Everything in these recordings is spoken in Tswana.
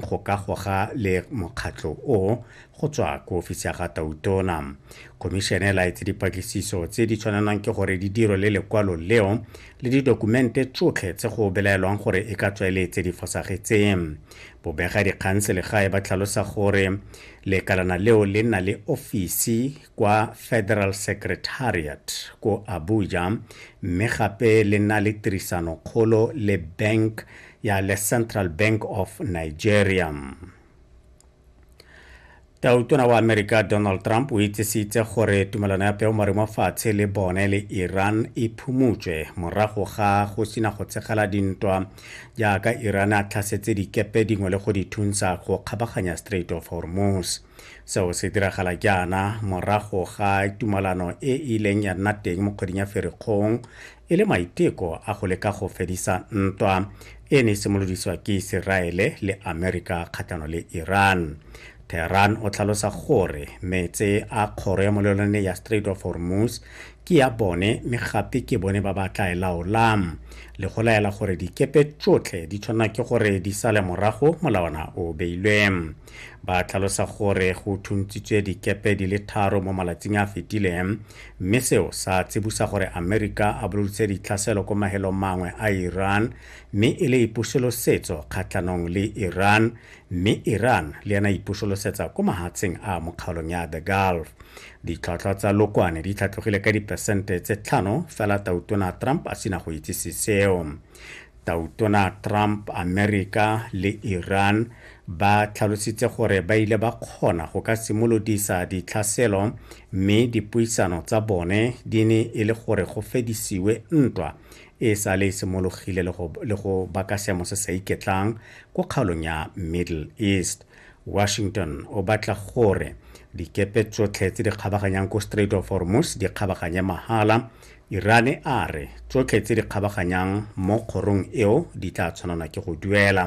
go ka goga le mokgatlho o go tswa ko ofisi ya ga tautona khomišene e laetse dipatlisiso tse di tshwanelwang ke gore di diro le lekwalo leo le didokumente tsotlhe tse go belaelwang gore e ka tswa e le tse di fosagetseng bobega dikgang selegae ba tlhalosa gore lekalana leo le nna le ofisi kwa federal secretariat ko abuja mme gape le nna le tirisanokgolo le bank ya le central bank of nigeria tautona wa amerika donald trump o itsisitse gore tumelano ya peomare mo fatshe le bone le iran e phumutswe morago ga go sina go tshegela dintwa jaaka iran a tlhasetse dikepe dingwe le go di thunsa go kgabaganya strait of hormuz seo se diragala jaana morago ga tumalano e e ileng ya nna teng mo kgweding ya ferikgong e le maiteko a go leka go fedisa ntwa e ne e simolodisiwa ke iseraele le amerika kgatlhano le iran tehran o tlhalosa gore metse a kgoro ya molelwane ya strait of hormuz ke ya bone mme gape ke bone ba ba tla e laolang le go laela gore dikepe tsotlhe di tshwanela ke gore di sale morago molawana o beilweng ba tlhalosa gore go thuntsitswe dikepe di le tharo mo malatsing a fetileng mme seo sa tsibusa gore amerika a boloditse ditlhaselo ko mahelong mangwe a iran mme e le ipusolosetso kgatlhanong le iran mme iran le yena ipusolosetsa ko mahatsheng a mokgaolong ya the gulf ditlhwatlhwa tsa lokwane di tlhatlogile ka diperesente tse tlhano fela tautona trump a sena go itsise seo Tautona Trump, Amerika le Iran ba tlhalositse gore ba ile ba kgona go ka simolodisa ditlhaselo mme dipuisano tsa bone di ne e le gore go fedisiwe ntwa e sa le e simologile le go baka seemo se sa iketlang ko kgaolong ya Middle East. Washington o batla gore dikepe tsotlhe tse di kgabaganyang ko Strait of Hormuz di kgabaganye mahala Irane a re tsotlhe tse di kgabaganyang mo kgorong eo di tla tshwanelwa ke go duela.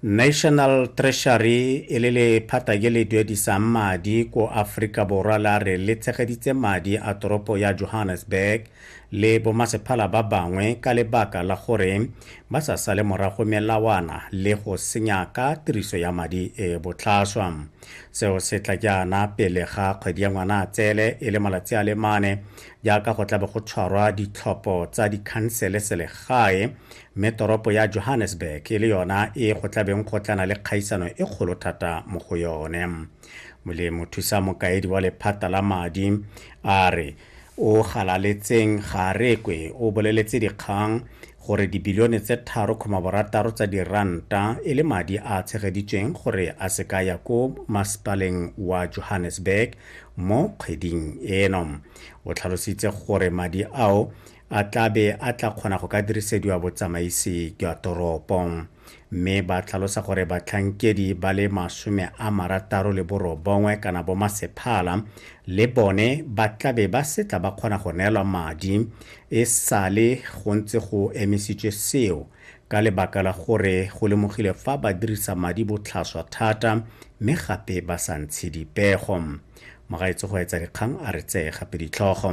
National Treasury e le lephata ke le duedisang madi ko Aforika Borwa la re le tshegeditse madi a toropo ya Johannesburg le bomasephala ba bangwe ka lebaka la gore ba sa sale morago melawana le go senya ka tiriso ya madi e botlhaswa. Seo se tla jaana pele ga kgwedi ya Ngwanatsele e le malatsi a le mane jaaka go tlabe go tshwarwa ditlhopho tsa dikhansele selegae mme toropo ya Johannesburg e le yona e go tlabeng go tlana le kgaisano e kgolo thata mo go yone. Molemo thusa mokaedi wa lephata la madi a re o galaletseng ga a rekwe o boleletse dikgang gore dibilione tse tharo kgoma borataro tsa diranta e le madi a tshegeditsweng gore a se ka ya ko masepaleng wa johannesburg mo kgweding eno o tlhalositse gore madi ao a tlabe a tla kgona go ka dirisediwa botsamaisi jwa toropo mme ba tlhalosa gore batlhankedi ba le masome a marataro le borobongwe kana bomasephala le bone ba tlabe ba setla ba kgona go neelwa madi e sale go ntse go emisitswe seo ka lebaka la gore go lemogile fa ba dirisa madi botlhaswa thata mme gape ba sa ntshe dipego magaetse go etsa dikgang a re tseye gape ditlhogo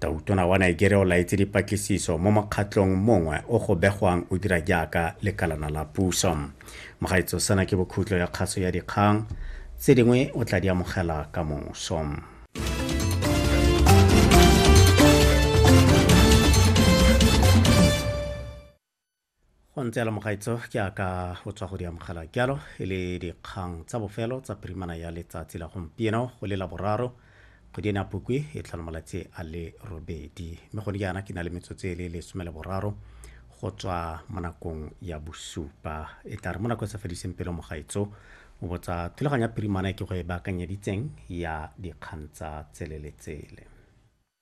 tautona wa nigeria o laetse dipatlisiso mo mokgatlong mongwe o go begwang o dira jaaka lekalana la puso mogaetso sana ke bokhutlo ya kgaso ya dikgang tse dingwe o tla di amogela ka moso go ntse yalo mogaitso ke a ka o tswa go di amogela jalo e le dikgang tsa bofelo tsa pirimana ya letsatsi la gompieno go le la boraro kgwedi ena pukwi e tlhola malatsi a le robedi mme gone jaana ke na le metsotso e le lesome le boraro go tswa mo nakong ya bosupa e tla re mo nako e sa fediseng pelo mogaitso o botsa thulaganyo ya pirimana e ke go e baakanyeditseng ya dikgang tsa tsele le tsele